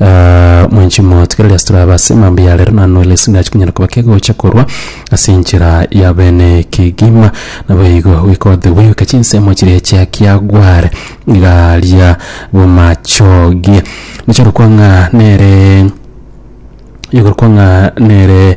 Aah, mwenchi moto, kera riase torabe ase emambia ya rero, naende nore ase ndache konyara koba kegocha korwa ase enchera ya bene kegima. Naboigo goikote goika chinsemo chiria chia kiagware igaria bomachoge. Nichirokwa ng'a nere, igorokwa ng'a nere.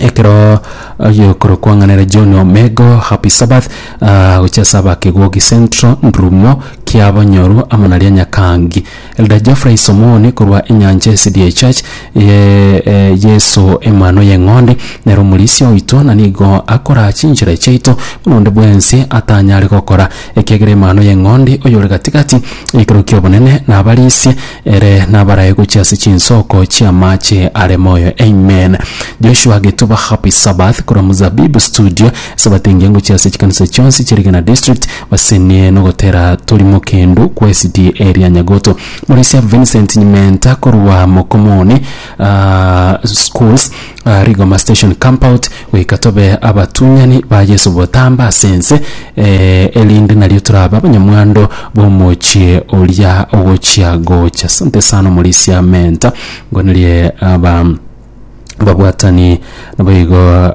ekero ayokoro kwang'anera John Omego Happy Sabbath ah, gochia ase abakegogi Central Ndurumo kia Bonyoro amo na ria Nyakangi Elder Geoffrey Somoni korwa Enyancha SDA Church ye eh, Yeso Emano y'Eng'ondi nere omorisia oito na nigo akora chinchera chiaito buna onde bwensi atanyare gokora ekiagera Emanu y'Eng'ondi oyore gati-gati y'ekerero ki'obonene nabarisie, ere nabarae gochia ase chinsoko chi'amaache are moyo. Amen. Joshua Getuba Happy Sabbath korwa Muzabibu Studio. Esabato engiya ngochia ase chikanisa chionsi chi'Eligena District basenie nogotera torimo kendo kwa SDA ria Nyagoto. Morisia Vincent Nyimenta korwa Mokomoni Schools. Rigoma Station Campout goika tobe abatunyani ba Yeso botambe ase ense, erinde nario torabe abanyamwando b'omochie oria ogochia gocha. Asante sana Omorisia Mentor, ngonerie aba ababwatani naboigo.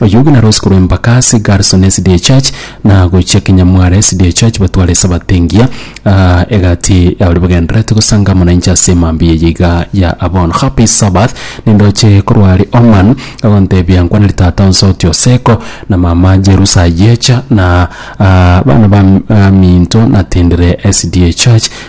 Oyio buna rosiko rw'empaka ase Garson SDA Church, na gochia Kinyamware SDA Church batware Esabato engiya, egati ya baria bagendererete gosanga amo nainche ase mambia eye iga ya abono. Happy Sabbath, nindoche korwa aria Oman agontebia nkwana ritata onsi oti Oseko na mama Jerusa ayecha na abana baminto natindire SDA Church,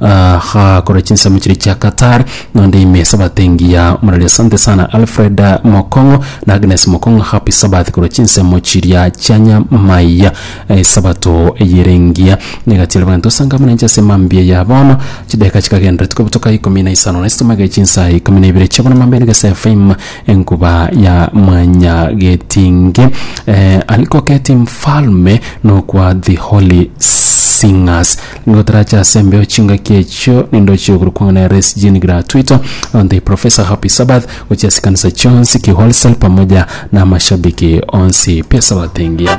Agakora chinsemo chiria chia Qatar nonde ime esabato engiya muraria asante sana Alfred Mokong'o na Agnes Mokong'o happy Sabbath korwa chinsemo chiria chia nyamaiya esabato eyere engiya negatiara abanto asanga amana inche ase mambia ya bono chideka chikagenderera tikobutoka ikomi na isano na isesemo egere chinsa ikomi na ibere chia bono mambia nigo ase FM enkuba ya Mwanyagetinge Aliko Keti Mfalme nokwa The Holy Singers. Nigo torache ase embeo chingaki echio nindoche igoro kwang'ana ya Reese Jean Gratuito on the Professor Happy Sabbath gochia ase ekanisa chionsi ki wholesale pamoja na amashabiki onsi pi esabato engiya.